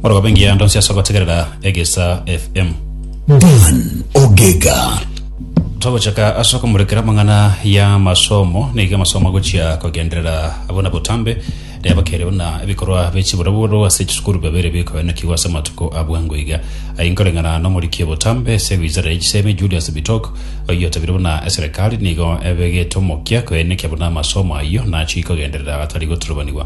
Orogoba engiya ya ndonsi ase ogotegerera Egesa FM. Dan Ogega. Togochaka ase okomorekera amang'ana ya masomo niga amasomo agochia kogenderera abona botambe naye bakere buna ebikorwa bie chiboroboro ase chisukuru bibere bikoenekigwa ase amatuko a bwango iga aye nkoreng'ana na omoriki obotambe ase wizara ya chisemi Julius Bitok oyio otabire buna eserekari nigo ebegete omokia koenekia buna amasomo ayio nachia kogenderera atari goturubanigwa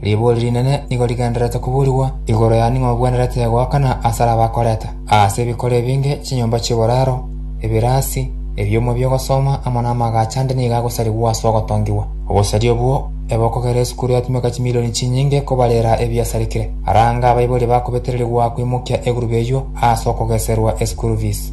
Riborio rinene nigo rigendererete koburigwa igoro yane ng'a ogwenerete goakana asare abakoreta aase ebikoro ebinge, chinyomba chi'oboraro, ebirasi, ebioma bi'ogosoma amo namagache ande nigo agosarigwa ase ogotongigwa. Obosaria obwo ebe okogera esukuru yatumeka chimilioni chinyinge kobarera ebiasarikire. Arange abaibori bakobetererigwa koimokia egurube eyio aase okogeserwa esukuru fees.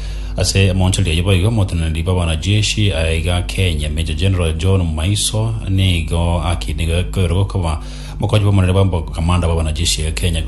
Ase emonchoria eyio boigo omoteneneri bw'abanajeshi aiga Kenya, Major General John Maiso nigo akinigaikerwe koba mokonyi bw'omonene bw'omokamanda bw'abanajeshi aiga Kenya.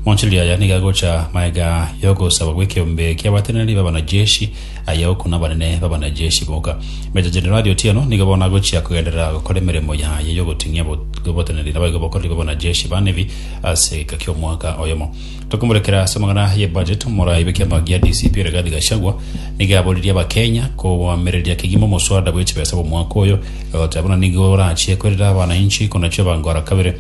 Monchoria aya nigo agocha magega y'ogosaba gw'ekeombe ki'abateneneri b'abanajeshi aya oku nabanene b'abanajeshi boka. Major Generali Otieno nigo bono agochia kogenderera gokora emeremo yaye y'ogoting'ia oboteneneri naboigo bokoreri bw'abanajeshi ba Navy ase gika ki'omwaka oyomo. Tokomorekera ase amang'ana ye budget, omoraai be kiama gia DCP Rigathi Gachagua nigo aboririe abakenya koamereria kegima omoswada bwe chibesa bw'omwaka oyo, egoteba buna nigo orachie koirera abanainchi konachia bangora kabere.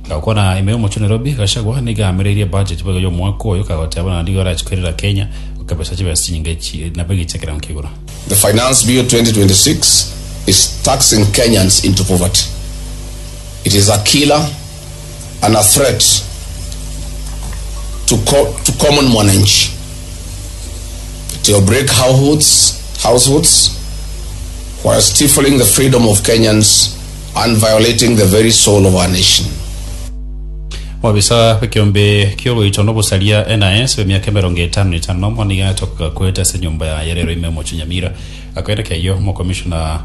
Gokwana ime omochie o Nairobi, Gachagua nigo amereirie budget boigo y'omwaka oyo, kagoteba buna nigo arachie koirera Kenya gokebesa chibesa chinyinge chi- na bwegi chia ekerengo kia igoro. The Finance Bill 2026 is taxing Kenyans into poverty. It is a killer and a threat to, co to common mwananchi. It will break households, households while stifling the freedom of Kenyans and violating the very soul of our nation. Obisa bw'ekeombe ki'oroito na obosaria, NIS, bw'emiaka emerongo etano na etano na omo nigo atoka goeta ase enyomba yaye rero ime omochie Nyamira. Akaire k'eyio, Omokomishona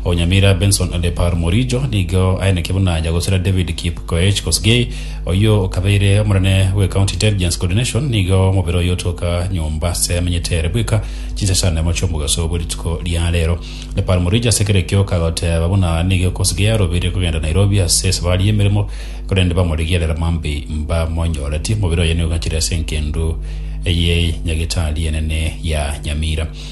o Nyamira, Benson Lepar Morijo, nigo aeneke buna Nyagosera David Kipkoech Kosgei, oyio okabeire omonene bw'eCounty Intelligence Coordination, nigo omobere oyio otoka nyomba ase amenyete ere bweka chinsa chane mochia omogaso bwe rituko ria rero. Lepar Morijo ase kera ekio kagoteba buna nigo Kosgei arobeire kogenda Nairobi ase esabari y'emeremo, korende bamorigerera mambei mbamonyoreti. Omobere oye nigo ogachire ase engendu eye nyagitari enene ya Nyamira.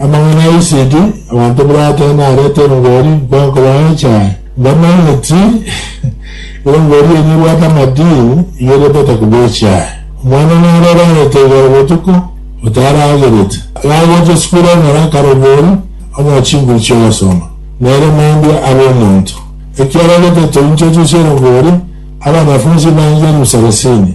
Amang'ana a isegi, abanto bire atano narete engori, nkokobae echae, mbone eti engori eye nebwate amadini, igeretete koba echae. Omwana nare orarete igoro botuko, otaragerete. Gagocha esukuru ekore akarobori, onywa chinguru chi'ogosoma, nere mambia abe omonto. Ekiagera getatoinchochwa chi'engori, abanafunsi baancha elufu sarasini.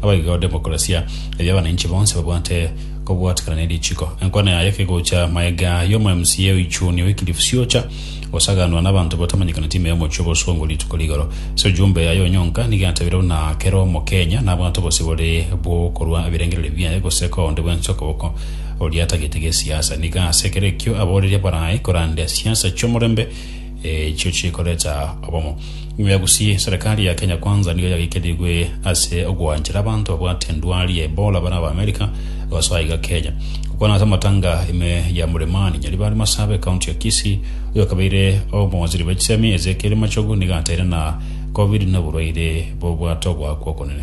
Naboigo demokrasia, erio abananchi bonsi babwate kobwatikana ne richiko. Enkwana yaye kegocha maega y'omo MCA oichuni Wycliffe Siocha, osaganwa nabanto batamanyekaneti ime y'omochie obosongo rituko rigoro. Ase ojumbe yaye onyonka nigo yatabire buna kera omokenya nabwate obosibore bw'okorwa ebirengererio biaye gose koonde bwensi okoboko oria atagete gesiasa. Nigo ase kera ekio aboreria barae korande siasa chi'omorembe, Echio chikoreta obomo. Nyuma ya gusii, serekari ya Kenya Kwanza nigo yagekerigwe ase ogoanchera abanto babwate endwari ya Ebola bare Abaamerika gosoa iga Kenya. Gokwana ase amatanga ime ya Muremani Nyaribari Masabe, County ya Kisii, oyokabeire omowaziri bw'echisemi Ezekiel Machogu nigo ateire na Covid noborwaire bobwate ogoakwa okonene.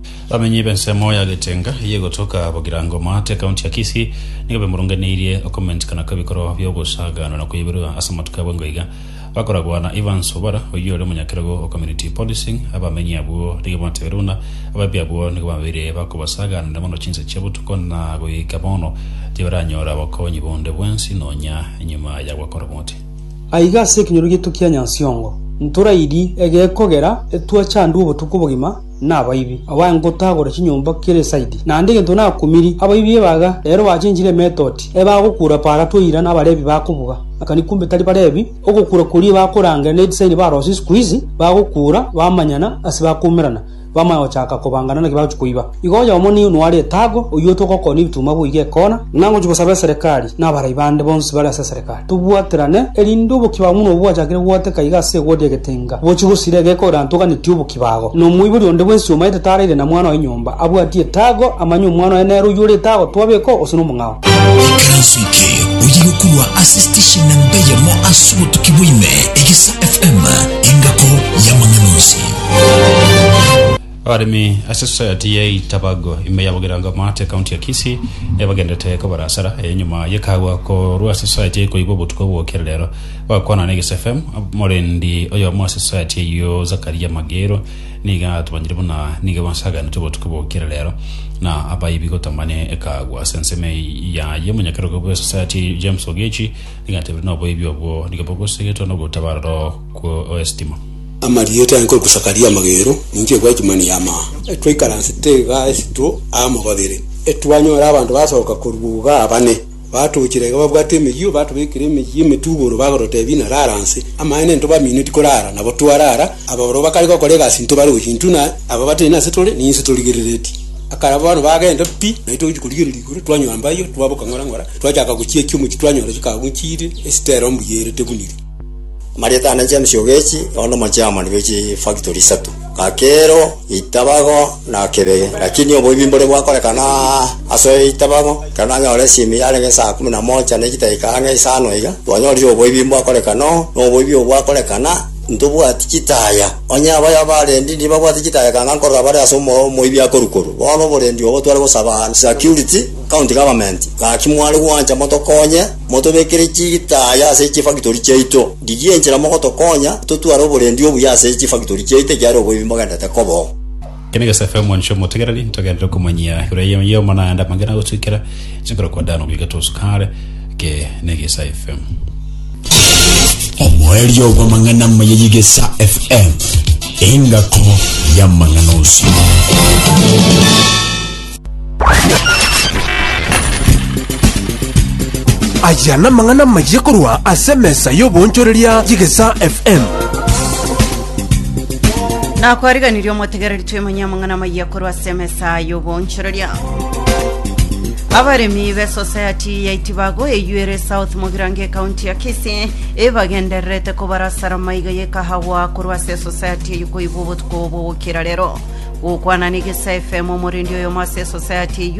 Abamenyi b'ensemo ya Getenga eye egotoka Bogirango Maate, County ya Kisii, nigo bemoronganeirie okomentikana kw'ebikorwa bi'ogosaganwa na koiborwa ase amatuko abo engo iga. Bakoragwa na Evans Obara oyio ore omonyakerogo o Community Policing, abamenyi abwo nigo batebeire buna abaibwi abwo nigo babeire bakobasaganera mono chinsa chia botuko na goika bono tibaranyora obokonyi bonde bwensi nonya nyuma ya gwakora omote. Aiga ase ekenyoro gieto kia Nyansiongo ntorairie egekogera etwa chandwa obotuko obogima nabaibi, abae ngotagora chinyomba kera esaidi, naende egento nakumiri abaibi ebaga, ere oachenchire emetoti, ebe agokuura para toira na abarebi bakobuga, akani kumbe tari barebi, ogokuura koria ebakorangera ne edisaini barosie sikuizi, bagokuura, bamanyana, ase bakoumerana, bamanya gochaka kobangana naki bagochia koiba. Igo oyomo nigo nware etago, oyio otogokoona ebituma boiga ekona, ng'a ngochia gosaba eserekari, na abarai bande bonsi bare ase eserekari. Tobwaterane, erinde oboki bwabo buna obwachakire gogoteka iga ase egodi egetenga, bochie gosira egeka ore antoganetie oboki bago. Na omoibori onde bwensi omaete taraire na mwana oye nyomba, abwatie etago, amanye omwana oye nere oyio ore etago, twabeka oo, gose nomong'ao. Ekeranso eke oyiga korwa ase station namba eyemo ase obotuki bwa ime, Egesa FM, engako y'amang'ana onsi. Abaremi ase Society ya Itabago ime ya Bugirango Mart ekaunti ya Kisii nibagenderete kobara asara eye nyuma yekagwa korwa ase Society eye koigwa obotuko bwokire rero. Bagokwana na Eges FM, omorendi oyomo ase Society eyio Zakaria Mageiro niga atomanyire buna nigo ebasaganete obotuko bwokire rero na abaibi gotamane ekagwa ase ensemo yaye. Omonyakerogo bwe Society James Ogechi niga atebire noboibi obwo nigo bogosegetwa nogotabarora kwo oestima. Amarieta yange korwa Sakaria amagero, ninki egweti mani y'amaa? Etwaikaransete igaa esitwo aa mobabere, etwanyora abanto basoka korwa igaa bane, batoochire iga babwate emeyio, batobekire emeyio emetuboro, bagototeebia ng'a rara nse. Amaene ntobaminie tikoraara, nabo twaraara, ababororo bakare gokora egasi ntobarochi, intwe na aba batari nase tore ninse torigereretie. Akara bono bagenda pi, na intwe togochia korigereria igoro, twanywa mbayo, twaboka ng'ora ng'ora, twachaka gochiekia omochie twanyora chikagu nchiire, esitero mbuyerete buniri. Marieta na James Ogechi bono nomochairman bwe chifactory isato Kakero, Itabago na Kebege. Lakini oboibi mbore gwakorekana ase Itabago, ekero nanyora esimi yarenge esaa kumi na mocha ne chidaeka ang'e isano iga, twanyorire oboibi mbwakorekana oo, na oboibi obwo bwakorekana ntobwati chitaya. Onye abaya abarendi nibabwate chitaya ekanga nkorora bare ase omo- omoibi akorwa korwa. Bono oborendi obo tware gosaba security, county government, gaki mware gwancha motokonye. Motobekere chitaaya ase chifagitori chiaito. Ndigie enchera mogotokonya totware oborendi obuya ase chifagitori chiaito ekiagera oboibi mbogendete koba oo. Kene gesaku amo inche omotegereri, ntogenderere komanyia igoro y'omo naende amang'ana agotuikera inche nkorokwa Dani oborike tosuka are, eke n'egesa FM. Omoerio bw'amang'ana amaya y'egesa FM, engako y'amang'ana onsi. Aya namang'ana amayia korwa ase emesa y'oboonchoreria y'Egesaa FM. nakwariganirie omotegereri twemanye amang'ana amayia korwa ase emesa y'oboonchoreria abaremi b'esosayati ya itibago eyuere south mogirango ekaunti ya kisii ebagendererete kobarasara maiga y'ekahawa korwa ase esosayati ey'okoigwa obotu Kobogokera rero, gokwana ne Gesa FM, omorendi oyomo ase esosayati eyio,